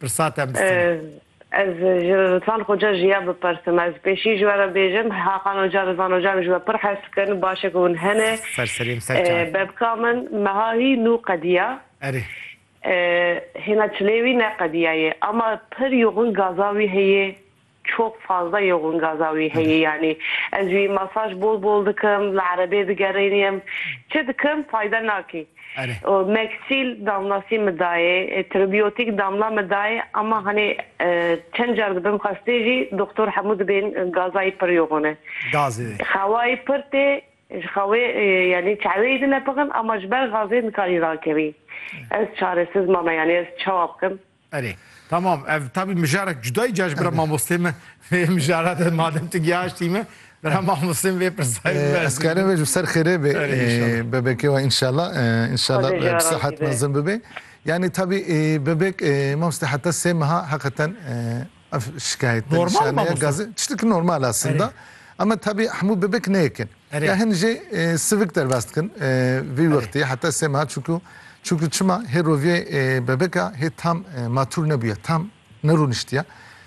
Pirsa te bistîne. Ez ji Rizvan Xoca jiya bipersim. Ez pêşî ji we re bêjim, Hakan Oca, Rizvan Oca min ji we pir hes dikin, baş e ku hûn hene. Ser serê em, ser çar. Bebka min meha hî nû qediya. Erê. Hêna çilê wî ne qediya ye. Ama pir yoxin gaza wî heye. Çok fazla yoğun gaza wî heye yanî ez wî masaj bol bol dikim li erebê digerêniyim çi dikim fayda nakê. Meksil damlasî min dayê tribiyotîk damla min dayê ama hanê çend car dibim xestê jî doxtor hemû dibên gazayî pir yoğun e. Xewayî pir tê ji xewê yanî çeweyî din e pixin ama ji ber gazê nikarî rakevî. Ez çaresiz mame yanî ez çawa bikim. Erê tamam ev tabî mijarek cudayî caş bira mamostê min vê mijara de madem tu giyaştî min bira mamostên vê pirsayê min Ez karim vê ji ser xêrê bê bebekê we inşallah inşallah bi sehet mezin bibê. Yanî tabî bebek mamoste heta sê meha heqeten Ev şikayet te Normal ma nîşaneya Mustafa. gazê tiştekî normal e aslında. Erê. Ema tebî hemû bibek nêyekin. Erê. Ya hin jê e, sivik derbas dikin e, vî Erê. wextî heta sê meha çûkû çûkû çima hê roviyê e, bebeka hê tam e, matûr nebûye, tam nerûniştiye.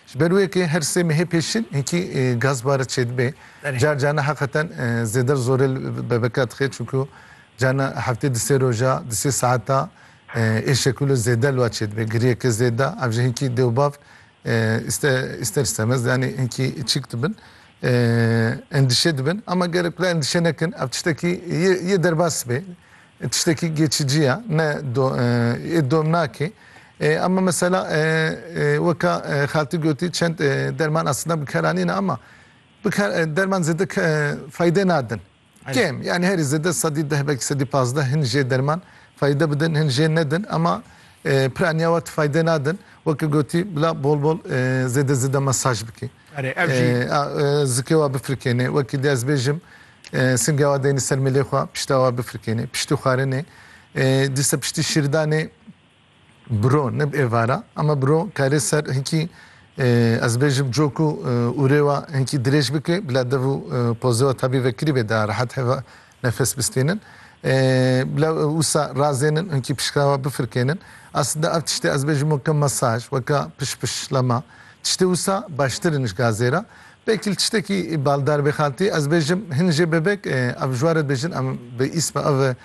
Ji ber wê yekê her sê mehê pêşîn hinkî e, gaz bare çêdibe. Erê. Car carna heqeten e, zêder zorê li bebeka dixe çûkû carna heftê di sê roja, di sê saeta Êşe ku li zêde li we çêdibe, giriyeke zêde, ev jî hinkî dê û bav îster îstemez yanî hinkî çîk dibin, endîşe dibin. Ama gerek bila endîşe nekin, ev tiştekî yê derbas bê, tiştekî geçicî ye, ne yê dom nake. Ama mesela weka xaltî gotî çend derman aslînda bikaranîne ama derman zêde faydê nadin. Kêm yanî herî zêde sedî deh belkî sedî pazdeh hin jê derman feyde bidin hin jê nedin ema pira niyawa ti feyde nadin weke gotî bila bol bol zêde zêde mesaj bikî zikê wa bifirkênê wekî dê ez bêjim singe wa deynî ser mêlê xwa pişta wa bifirkênê piştî xwarinê dîsa piştî şîrdanê biro ne bi êvara ema biro karê ser hinkî ez bêjim cok û ûrê wa hinkî dirêj bike bila dev û pozê wa tabî vekirî bê da rehet heva nefes bistênin bila wisa razênin hinkî pişka wa bifirkênin aslinde ev tiştê ez bêjim weke masaj weke pişpişlama tiştê wisa baştir in ji gazê re belkî li tiştekî baldar bê xaltî ez bêjim hin jê bebek ev ji ware dibêjin em bi îsma ev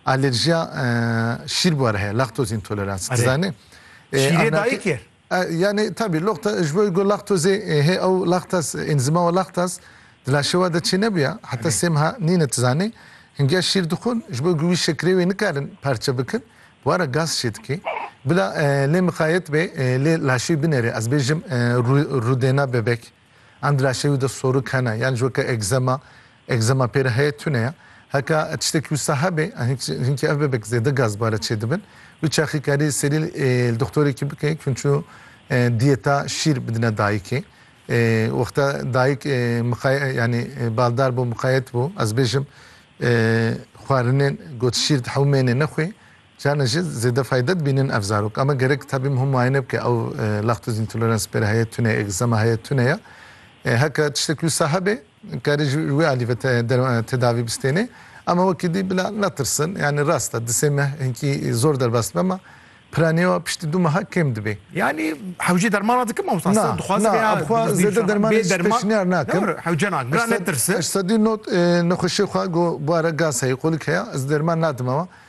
Alerjiya şîr bû re heye, lactose intolerance. Tu zanî? Şîrê dayî kir. Yanî tabî locta ji bo ku lactose hê ew lactas enzîma wa lactas di laşê wa de çê nebûya heta sê meha nîne tu zanî hingiya şîr dixwin ji bo ku wî şekirê wê nikarin parçe bikin bi wara gaz çê dike. Bila lê miqayet be lê laşê wî binêre ez bêjim rûdêna bebek. Em di laşê wî de sorik hene, yan ji weke egzema, egzema pê re heye tune ye. Heke tiştekî wisa hebe, hinkî ev bebek zêde gazbare çêdibin. Wî çaxî karî serî li doxtorekî bike ku çû diyeta şîr bidine dayikê. Wexta dayik miqay yanî baldar bû, miqayet bû, ez bêjim xwarinên got şîr di hewmênê nexwe, Carna jî zêde feyde dibînin ev zarok. Ame gerek tabîm hûn muayene bike ew lactose intolerance pêre heye tune ye, eczema heye tune ye. Heke tiştek wisa hebe karê ji wê alî ve tedavî bistêne. Ame wekî dî bila netirsin. Yanî rast e di sê meh hinkî zor derbas dibe ma piranîya piştî du meha kêm dibê. Yanî hewce dermana dikin mamosta? Na, na ev xwe zêde dermanê jî pêşniyar nakim. Hewce nakin. Bila netirsin. Ji sedî not nexweşiyê xwe got bû ara gaz heye, qolik heye. Ez derman nadim ewa.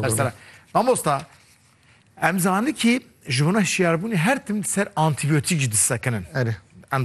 Serserek. Mamosta, em zanin ki ji wana hişyarbûnê her tim ser antîbiyotîk jî disekinin. Erê. Em zanin.